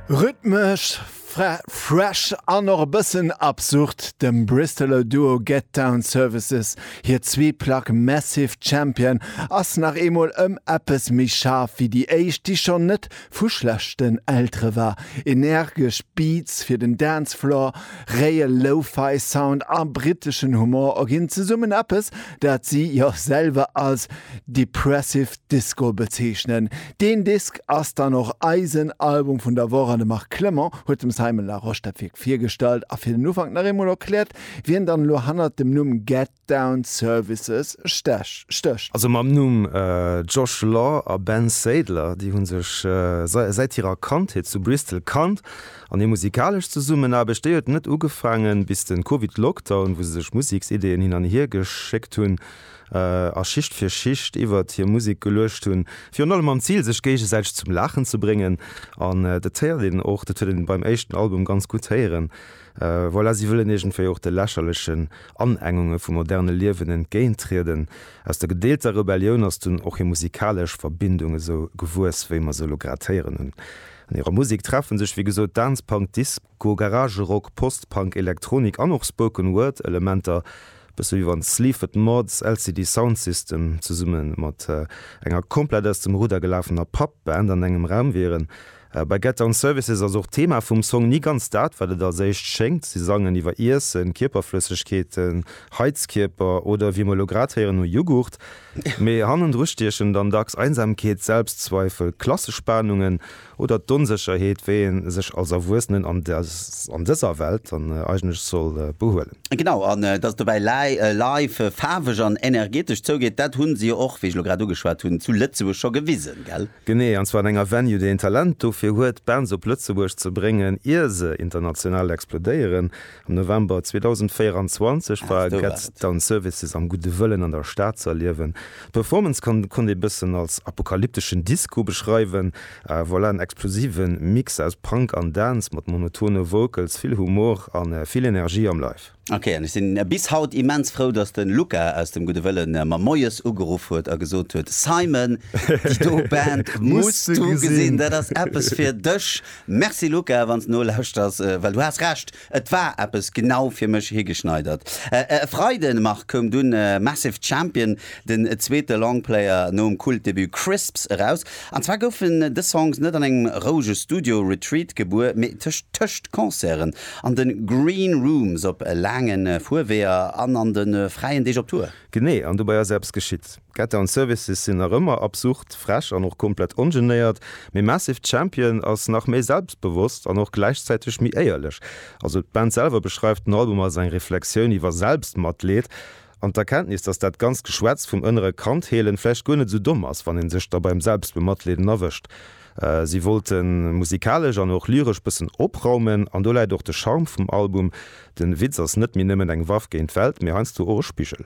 Rhythmesch fresh an och e bëssen absurd, dem Bristoler Duo Get Down Services hir zwee Plack Massive Champion ass nach eemol ëm eppes méi schaarf wéi déi éischt, déi schonn net vu schlechten Eltere war. Energesch Beats fir den Dance Floor, réie Lo-Fi Sound a briteschen Humor erginn zesummen eppes, dat si jo selwer als depressive Disco bezeechnen. Deen Disk ass dann och eisen Album vun der Woch an de Marc Clement huet dem Simon Larosche dat Wierk virgestallt a fir den Ufank nach eemol erkläert, wien dann elo hannert dem Numm Get Down Services stécht. Also mam Numm Josh Law a Ben Sadler, déi hu sech säit hirer Kandheet zu Bristol kannt an hir musikalesch Zesummenaarbecht, déi huet net ugefaangen, bis de Covid-Lockdown, wou se sech Museksideeën hin an hir geschéckt hunn, a Schicht fir Schicht iwwert hir Musek geluecht hunn, virun allem mam Zil sech géigesäiteg zum Laachen ze bréngen an dat héiert een och, dat huet een beim éischten Album ganz gutt héieren, voilà, si wëllen iergendwéi och de lächerlechen Anengunge vum moderne Liewen entgéintrieden. Aus der gedeelter Rebellioun ass dunn och hir musikalesch Verbindung esou gewuess, wéi mer se elo grad héieren hunn. An hirer Musek treffe sech wéi gesot Dance-Punk-Disco-. Goe Garage Rock, Post-Punk, Elektronik an och Spoken Word Elementer, bësse wéi wann Sleaford Mods, LCD Sound System zesumme mat enger komplett aus dem Rudder gelafener Pub-Band an engem Raum wieren. Bei Get Down Services ass och d'Thema vum Song ni ganz dat, wat et als éischt schéngt. Si sangen iwwer Iessen, Kierperflëssegkeeten, Heizkierper oder, wéi mer elo grad héieren, no Jughurt. Mee hannendru stiechen dann dacks Einsamkeet, Selbstzweifel, Klassespanungen oder d'Onsécherheet, wéi ee sech als Erwuessenen an an dëser Welt dann eigentlech soll behuelen. Genau, an dass et dobäi live, faarweg an energetesch zougeet, dat hu se jo och, wéi ech elo grad ugeschwat hunn, zu Lëtzebuerg scho gewisen, gell? Genee, an zwar an enger Venue, déi een Talent dofir huet, Bands op Lëtzebuerg ze bréngen, ier se international explodéieren. Am November 2024 war Gett Down Services am Gudde Wëllen an der Stad ze erliewen. D'Performance konnt ee bëssen als apokalypteschen Disco beschreiwen. Voilà en explosive Mix aus Punk an Dance mat monotone Vocals, vill Humor a vill Energie am Live. Ok, an ech sinn bis haut immens frou, dass den Luca aus dem Gudde Wëllen mer moies ugeruff huet a gesot huet, Simon, déi do Band muss du gesinn, dat ass eppes fir dech. Merci Luca, wann s nolauschterst, well du has Recht, et war eppes genau fir mech higeschneidert. E Freiden, Marc, koum dunn Massive Champion, den zweete Longplayer nom Kultdebut Crisps eraus. An zwar goufen dës Songs net an engem rouege Studio-Retreat gebuer, mee tëscht tëscht Concerten, an de Green Rooms, op laange Fuerweeër an an de fräien Deeg op Tour. Genee, an dobäi ass eppes geschitt. D'Getter an Services sinn nach ëmmer absurd frech an och komplett ongenéiert, mee Massive Champion ass nach méi selbstbewosst an och gläichzäiteg méi éierlech. Also d'Band selwer beschreift den Album als eng Reflexioun iwwer Selbstmatleed an d'Erkenntnis, dass dat ganzt Geschwätz vum ënnere Kand heelen vläicht guer net esou domm ass, wann ee sech da beim Selbstbematleeden erwëscht. Si wollte musikalesch an och lyresch bëssen opraumen an do läit och de Charme vum Album, den Witz ass net méi nëmmen eng Waff géint d'Welt, mee heiansdo och e Spigel.